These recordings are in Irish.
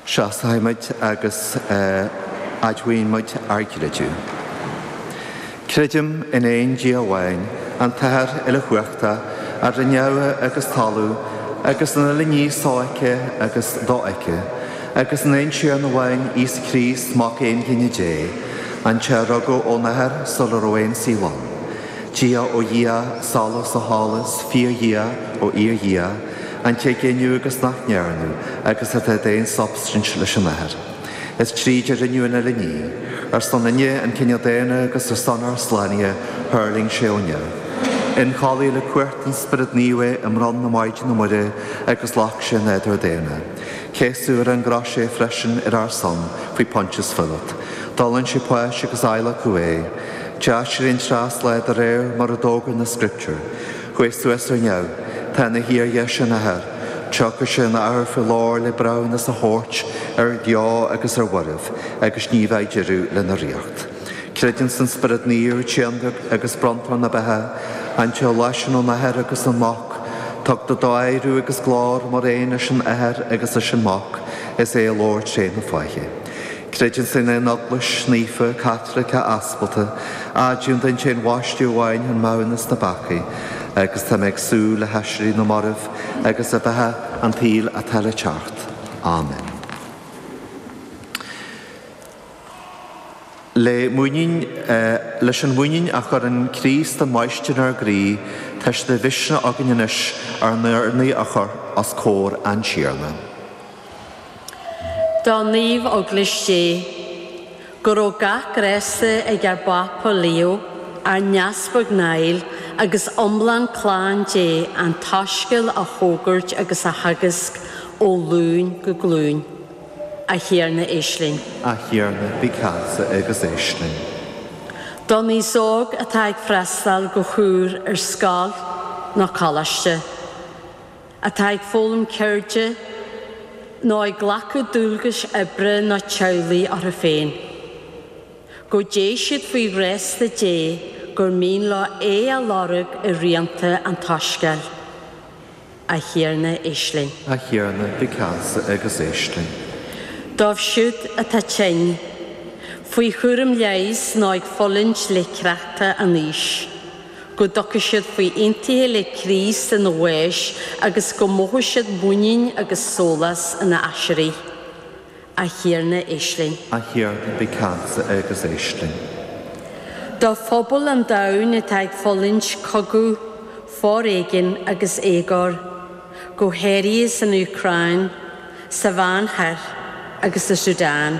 Seasfaidh muid agus admhaíonn muid ár gcreideamh. Creidim in aon Dia amháin, an tAthair uilechumhachta, a rinne neamh agus talamh agus an uile ní sofheicthe agus dofheicthe, agus in aon Tiarna amháin, Íosa Críost, Mac Aonghine Dé, an té a rugadh ón Athair sula raibh aon saol ann, Dia ó Dhia, Solas ó Sholas, Fíor-Dhia ó Fhíor-Dhia, An té a geineadh agus nach ndearnadh agus atá d'aon substaint leis an Athair, is tríd a rinneadh an uile ní, ar ár son-na an cine daonna agus ar son ár slánaithe thuirling sé ó neamh. Ionchollaíodh le cumhacht an Spioraid Naoimh é i mbroinn na Maighdine Muire agus ghlac sé nádúr daonna. Céasadh ar an gcrois é freisin ar ár son faoi Pontius Píoláit. D'fhulaing sé páis agus adhlacadh é. D'aiséirigh an treas lá de réir mar a d'fhógair na Scrioptúir. Chuaigh suas ar neamh. Tá ina shuí ar dheis an Athar. Tiocfaidh sé an athuair faoi ghlóir le breithiúnas a thabhairt ar bheo agus ar mhairbh agus ní bheidh deireadh lena ríocht. Creidim san Spiorad Naomh, Tiarna agus bronntóir na beatha, an té a ghluaiseann ón Athair agus ón Mac, tugtar dó adhradh agus glóir mar aon leis an Athair agus leis an Mac, is é a labhair tré na fáithe. Creidim san aon Eaglais naofa Caitliceach aspalda, admhaím an t-aon bhaisteadh amháin chun maithiúnas na bpeacaí, agus tá mé ag súil le haiséirí na mairbh agus le beatha an tsaoil atá le teacht. Amen. Le muinín, leis an mhuinín a chuireann Críost an Mháistir inár gcroí, tá sé de mhisneach againn anois ár n-urnaí a chur os comhair an Tiarna. Do Naomh Eaglais Dé. Go raibh gach grásta ag ár bPápa Leo, ár nEaspag Niall agus iomlán clann Dé an tSoiscéal a fhógairt agus a theagasc ó ghlúin go glúin. A Thiarna éist linn. A Thiarna bí ceansa agus éist linn. Don aos óg atá ag freastáil go húr ar scoil nó coláiste. atá ag foghlaim ceirde nó ag glacadh dualgais oibre nó teaghlaigh orthu féin. Go dté siad faoi ghrásta Dé gur mian leo é a lorg i rianta an tSoiscéil. A Thiarna éist linn. A Thiarna bí ceansa agus éist linn. Dóibh siúd atá tinn, faoi chúram leighis nó ag fulaingt le créachta an aois. go dtiocfaidh siad faoi aontaithe le Críost ina bhás agus go mothóidh siad muinín agus sólás ina aiséirí. A Thiarna, éist linn. A Thiarna, bí ceansa agus éist linn. Do phobal an domhain atá ag fulaingt cogadh, foréigean agus éagóir, go háirithe san Úcráin, sa Mheánoirthear agus sa Sudan.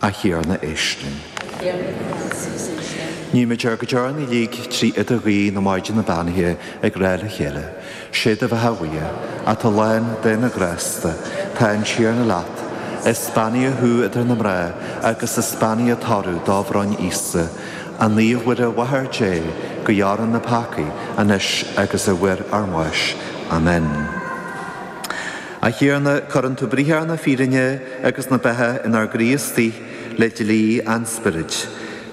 A Thiarna éist linn. Nímid ár gcuid urnaí uilig trí idirghuí na Maighdine Beannaithe ag rá le chéile, Sé do bheatha a Mhuire, atá lán de na grásta, tá an Tiarna leat, is beannaithe thú idir na mná agus is beannaithe toradh do bhroinne, Íosa. A Naomh-Mhuire, a Mháthair Dé, guigh orainn na peacaigh, anois agus ar uair ár mbáis. Amen. A Thiarna, cuireann tú briathar na fírinne agus na beatha inár gcroí istigh le dlí an Spioraid.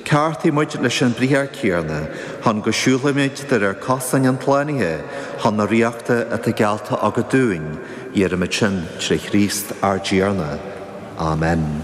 Ceartaigh muid leis an bhriathar céanna chun go siúlfaimid de réir cosáin an tslánaithe chun na ríochta atá geallta agat dúinn, iarraimid sin trí Chríost ár dTiarna. Amen.